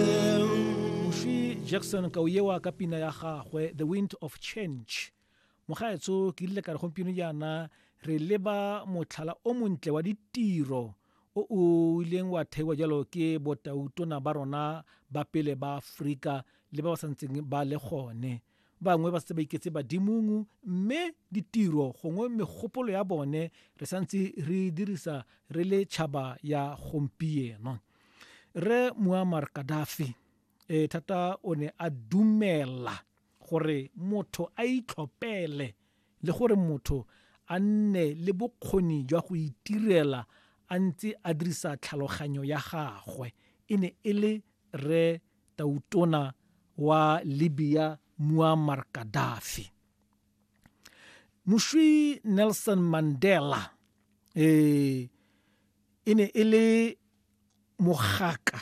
Moswi Jackson Kauyewa ka pina ya gagwe The Wind of Change. Mogaetsho ke rile ka re gompieno jaana re leba motlhala o montle wa ditiro o o ileng wa theiwa jalo ke botautona ba rona ba pele ba Aforika le ba ba santseng ba le gone. Bangwe ba setse ba iketse badimong mme ditiro gongwe megopolo ya bone re santse re e dirisa re le tšhaba ya gompieno. Re Muammar Gaddafi e thata o ne a dumela gore motho a itlhopele le gore motho a nne le bokgoni jwa go itirela a ntse a dirisa tlhaloganyo ya gagwe e ne e le re tautona wa Libya Muammar Gaddafi Mushwi Nelson Mandela eh e ne e le mogaka,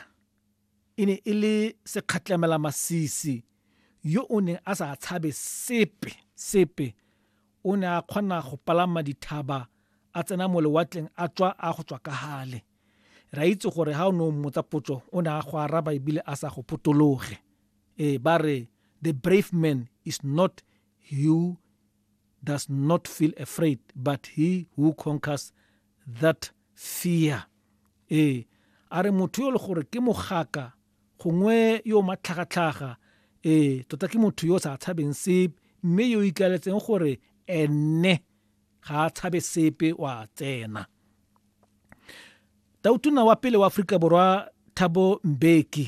e ne e le sekgatlamela masisi yo o neng a sa tshabe sepe, sepe. O ne a kgona go palama dithaba a tsena mo lewatleng a tswa a go tswa ka hale. Ra itse gore ha o ne o mmotsa potso o ne a go araba ebile a sa go potologe. Ee, ba re the brave man is not you does not feel afraid but he who conquers that fear ee a re motho yo le gore ke mogaka gongwe yo matlhagatlhaga ee tota ke motho yo o sa tshabeng sepe mme yo ikaletseng gore ene ga a tshabe sepe wa tsena tautona wa pele wa aforika borwa thabo mbeki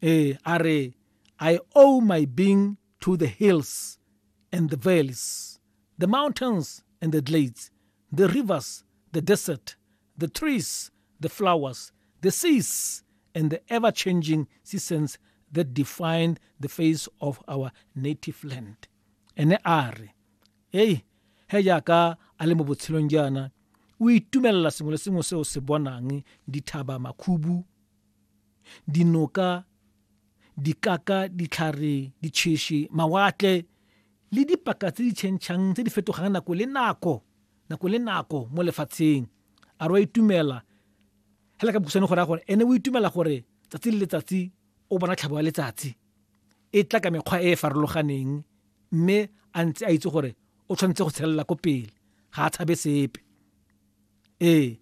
ee a re i owe my being to the hills and the valleys, the mountains and the glades, the rivers, the desert, the trees, the flowers, the seas, and the ever changing seasons that define the face of our native land. Ene a re, Ei, he jaaka a le mo botshelong jaana, o itumelela sengwe le sengwe se o se bonang, dithaba, makhubu, dinoka, dikaka, ditlhare, ditšheši, mawatle le dipaka tse di tšhentšhang tse di fetogang nako le nako nako le nako mo lefatsheng a re wa itumela hela ka bokhutshwane go raya gore ene o itumela gore tsatsi le letsatsi o bona tlhabo ya letsatsi e tla ka mekgwa e e farologaneng mme a ntse a itse gore o tshwanetse go tshelela ko pele ga a tshabe sepe ee